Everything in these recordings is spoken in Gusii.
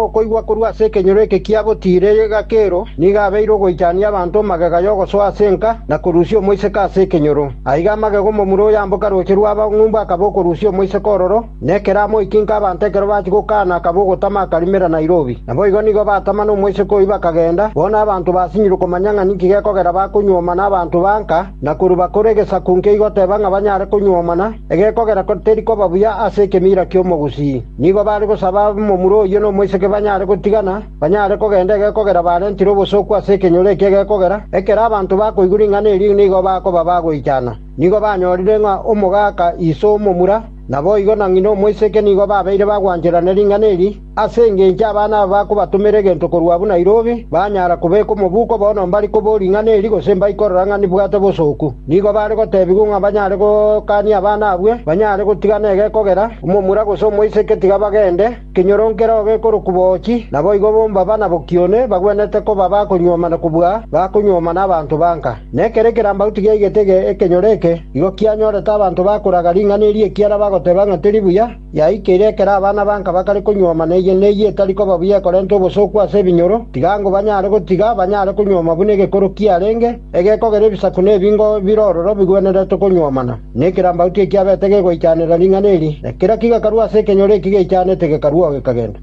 Okoigwa korwa ase ekenyoro eke kia gotiira egakero nigo abeire ogoichania abanto magega y'ogosoa ase enka na korusia omoiseke ase ekenyoro. Aiga amagega omomura oyamboka rooche rw'abang'umbu akaba okorusia omoiseke ororo, na ekero amoikinka abanto ekero bachia gokaana akaba ogotama akarimera Nairobi. Naboigo nigo batama nomoiseke oyio bakagenda, bono abanto basinyire komanya ng'a ninki gekogera bakonyuomana abanto ba nka na korwa bakora egesaku nkeigoteeba ng'a banyare konyuomana, egekogera teri koba buya ase ekemira ki'omogusii. Nigo baare gosaba momura oyio nomoiseke banyare gotigana, banyare kogenda egekogera barentire obosooku ase ekenyoro ekio egekogera, ekero abanto bakoigwa ring'ana erio nigo bakoba bagoichana. Nigo banyorire ng'a omogaka iso o momura, naboigo na ng'ina omoiseke nigo babeire bagwancherana ring'ana eri, ase engencho abana aba bakobatomera egento korwa abwo Nairobi, banyara kobeka omobuko bono mbari kobo ring'ana eri gose mbai korora ng'a nibwate obosooku. Nigo baare gotebigwa ng'a banyare gokania abana abwo banyare gotigana egekogera, Omomura gose omoiseke tiga bagende, ekenyoro nkeroo gekorokwa boochi, naboigo bomba bana bokione bagwenerete koba bakonyuomana kobua bakonyuomana abanto banka. Na ekero ekerambagu tigiaigete ekenyoro eke, igo kianyorete abanto bakoraga ring'ana eri ekiagera bagoteba ng'a teri buya, yaikeire ekero abana banka bakare konyuomana eye ne eye etari koba buya ekorenta obosooku ase ebinyoro, tiga ng'o banyare gotiga banyare konyuoma buna egekoro kiarenge, egekogera ebisaku na ebingo bire ororo bigwenerete konyuomana. Nekerambauti ekiabete gegoichanera ring'ana eri, na kera kigakarua ase ekenyoro eki geichanete gekarua oo gekagenda.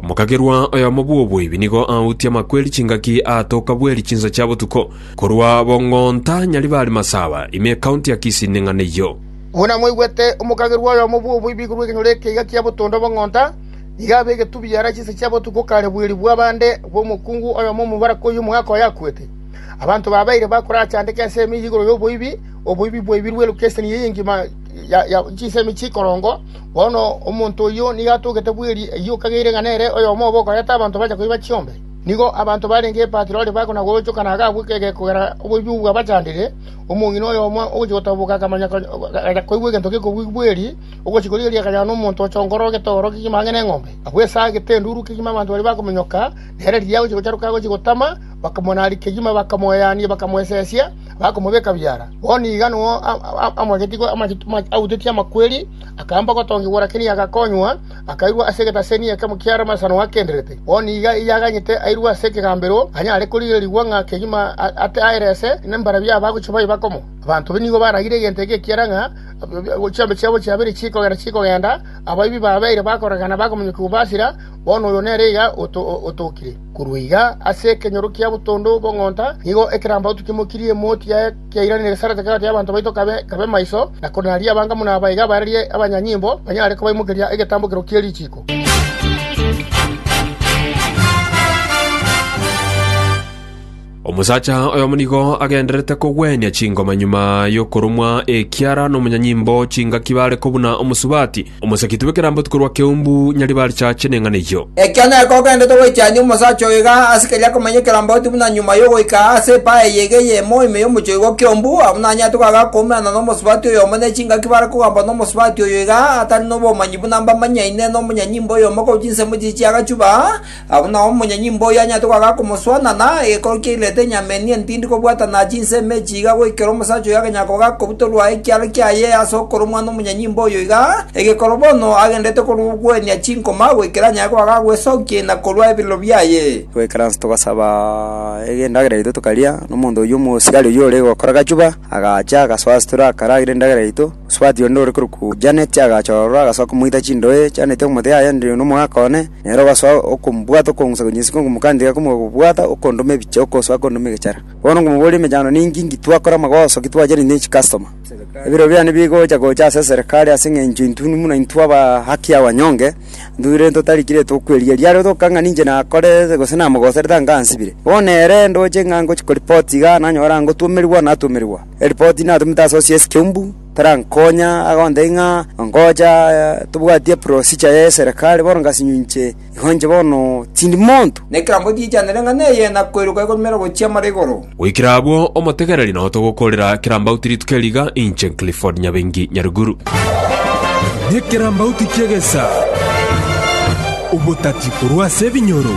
Omokagerwa oyomo bw'oboibi nigo autie amakweri chingaki aatoka bweri chinsa chia botuko, korwa Bong'onta, Nyaribari Masaba, ime ekaunti ya Kisii neng'ana eyio. Buna mwaigwete, omokagerwa oyomo bw'oboibi igurwa ekenyoro ekeiga kia botondo Bong'onta, Nigo abegetwe biara chinsa chiabo otuko o kare bweeri bw'abande bw'omokungu oyomo omobaraka oyio omogaka oye akwete. Abanto babeire bakorachandeke ense eyemo igoro y'oboibi, oboibi bwaibirwe elukeseni eye engima chinsemi chikorongo. Bono omonto oyio nigo atogete bweeri eyio okageire ng'a nere oyomo obe okoreta abanto bache koiba chiombe. Nigo abanto barenge Patiroli bakona-gochokana agakwa ekegega kogera oboibi obwo bwabachandire, omong'ina oyomo ogochia gotoboka akamanya agacha koigwa egento gekobua bweeri, Ogochika oria erio akanyora nomonto ochongora egetogoro kegima ang'e neng'ombe. Agwo esaa agete enduru kegima abanto baria bakominyoka, na ere riria agochia gocharoka agochia gotama, bakamonaaria kegima, bakamoeania, bakamoesesia, bakomobeka biara. Bono iga nao amoegetie autetie amakweri, akaamba gotongigwa, lakini agakonywa, akairwa ase egetaseni ekemo ki'amasano akenderete. Bono iga erio aganyete airwe ase ekegambero, anyare korigererigwa ng'a kegima aterese nembarabi aba gochia baye bakomo. Abanto nigo baragire egento eke ekiagera ng'a Chiambe chiabo chiabere chikogera chikogenda, abaibi babeire bakorekana bakomonyokigwa basira, bono oyo nere iga otokire. Korwa iga ase ekenyoro kia botondo bw'ong'onta nigo ekerambauti kimokirie emoti yaye kiairanire gesaarete kegati y'abanto baito kabe maiso, na konaria abangamu na abaiga barerie abanyanyimbo banyare kobaimokeria egetambokero kie richiiko. Omosacha oyomo nigo agendererete kogwenia chingoma nyuma y'okoromwa ekiara nomonyanyimbo chingaki bare kobuna omosubati, omosegi tube keramboti korwa keumbu nyaribarichache neng'ana eyio. Ekiagera nere kogendererete goitiania omosacha oyo iga ase keria akomanya ekeramboti buna nyuma y'ogoika ase epae eye iga eyemo ime y'omochoigo o keumbu, abwo nanyarete koaga akoumerana nomosubati oyomo ne chingaki bare kogambwa nomosubati oyo iga atari nobomanyi buna mbamanyaine nomonyanyimbo oyomo korwa chinsemo chiria chi'agachuba, Agwo nao omonyenyimba oyio anyarete goaka akomosoa, na naye egekooro kiairerete enyama enia entindi kobwatana chinsa ime echi iga goikera omosacha oyo agenya koga kobutorwa ekiara kiaye ase okorua omwana omonyenyimba oyo iga, egekooro bono agendererete korwa ogwenia chinkoma goikera anyare goaka agwesokia ina korwa ebirero biaye. Goikera inse togasaba endagera yaito tokaria, na omonto oyio omosiari oyio ore gokora gachuba agacha agasoa asitore akaragera endagera yaito. Osubati onde ore korokwa Janet agacha ororo, agasoa komoita chindoe chianeti omote yaye ende nomogaka one, na ere ogasoa okomobwata, okongusa konyesika, okomokandera komobwata, okondoma ebiche, okosoa kondoma egechara. Bono nkomoboria emechando ninki, inki twakore amagoso, ki twachere intwe chicustom. Ebiro biane bigocha gocha ase eserekari ase eng'encho intwe buna intwe aba haki ya wanyonge, intwe bire totarikire tokwerigeria. Riario toka ng'a ninche nakorete gose namogoserete anga ansibire. Bono ere ndoche ng'a ngochi koreport iga, nanyore angotwomerigwa, natwomerigwa. eripoti natomete ase osiesi keumbu terankonya agondei ng'a ngocha tobwati eprosicha y'eserekari bono ngasinyo inche igo inche bono tindi monto. Na ekerambe otiichanere ng'a neye na koiroka ekorumera gochia mare igoro. Goikera abwo, omotegereri nao togokorera kerambauti rituko eri iga, inche Clifford Nyabengi Nyaruguru. Nekerambauti ki'egesa, obotati korwa ase ebinyoro.